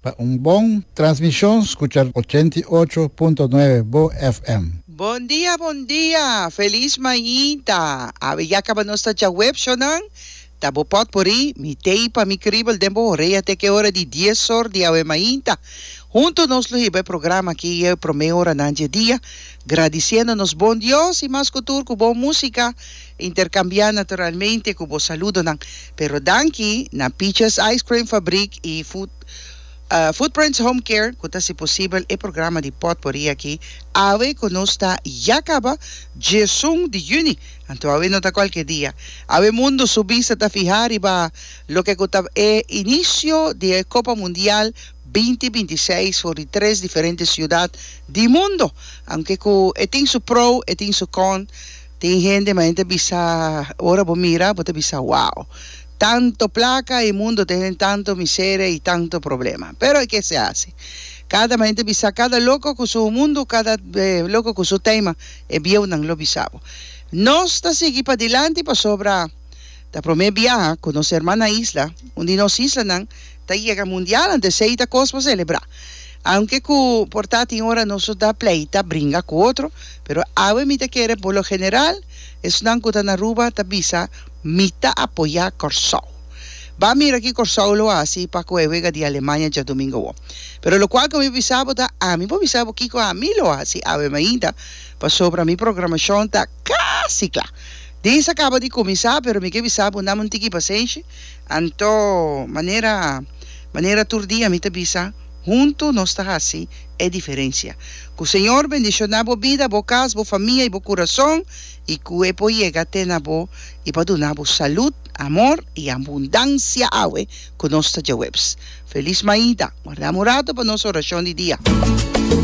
Pa un bon transmishon skucha ochenta i ocho punto nuebe Bo FM. Bon dia bon dia felis mainta awe ya kaba nos ta djaweb shonan ta bo pot pori mi tei pa mi kribel den bo orea te ke ora di dies or di awe mainta hunto nos lo hiba e programa aki e prome oranan dje dia gradisiendo nos bon Dios i mas ku tur ku bon musika Interkambiá naturalmente ku bo saludonan. Pero danki na Peaches Ice Cream Fabrik i Footprints Home Care ku ta hasi posibel e programa di potpori aki awe ku nos ta ya kaba djiesun di yüni, anto awe no ta kualke dia. Awe mundu su bista ta fihá riba loke ku ta e inisio di e Kopa Mundial binti binti seis for di tres diferente siudat di mundu. Aunke ku e tin su pro e tin su kon. Tin hende ma hende ta bisa ora bo mira bo ta bisa wow tanto placa e mundo ta hende tanto miseria y tanto problema pero e kese haci cada ma hende bisa cada loco cu su mundo cada loco cu su tema e bieunan lo bisa bo nos ta sigui padilanti pasobra ta prome biaha cu nos hermannan isla un di nos islanan Ta yega mundial anto esey ta cos pa celebra. Aunke cu por ta tin ora nos lo ta pleita, bringa cu otro, pero awe mi ta kere por lo general esnan cu ta na Aruba ta bisa mi ta apoya Corsou. Ba mira ki Corsou lo haci pa coe wega di Alemania djadomingo wo. Pero locual cu mi bisa bo ta ami por bisa bo kico ami lo haci awe mainta pasobra mi programacion ta casi cla. Dis a caba di cuminsa pero mi ke bisa bo nam un tiki pasenshi, Anto, manera manera tur dia mi ta bisa, huntu nos ta hasi e diferensia. Ku Señor bendishoná bo bida, bo kas, bo famia i bo kurason, i ku e por yega te na bo i pa duna bo salud, amor i abundansia awe ku nos ta djaweps. Felis Maida! Guardá morado pa nos orashon di dia.